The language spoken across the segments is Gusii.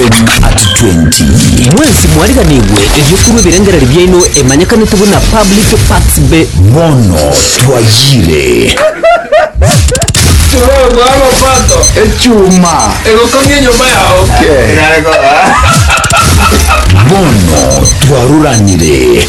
Part 20. Mwensi mwariganigwe erio korwa ebirengererio biaino emanyekanete buna public parts be. Bono twayire. Echuma egokong'ia enyomba yao. Bono twaruranire.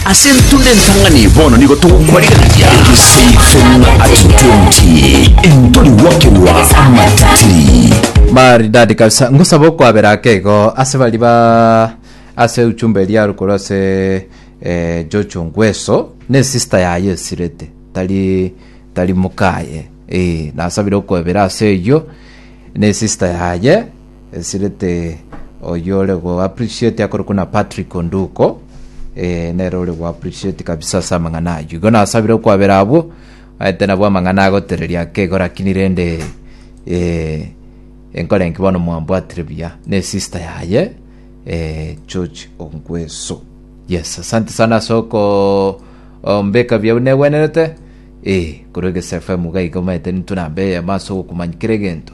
Ase entunda entang'ani bono nigo togokwarigania egesaifeng'a at 20 entori gwakerwa amateteri. Maridadi kabisa ngosaba okwabera ake igo ase bari ba ase ujumbe eria are korwa ase eh, Jojo Ngweso ne sister yaye esirete tari tari mokaye eh, nasabire okwebera ase eyio ne sister yaye Esirete oywo ore go appreciate akorokwa na Patrick Onduko eh, nere ore go appreciate kabisa ase amang'ana aywo igo nasabire okwabera abwo aete nabwo amang'ana agotereria akego lakini rende eh, enkore enki bono mwambwatire buya ne sister yaye eh, George Ongweso yes asante sana ase oko ombeka buya buna egwenerete eh, korwa egese FM iga igo maete nintwe namba eyemo ase ogokumanya kera egento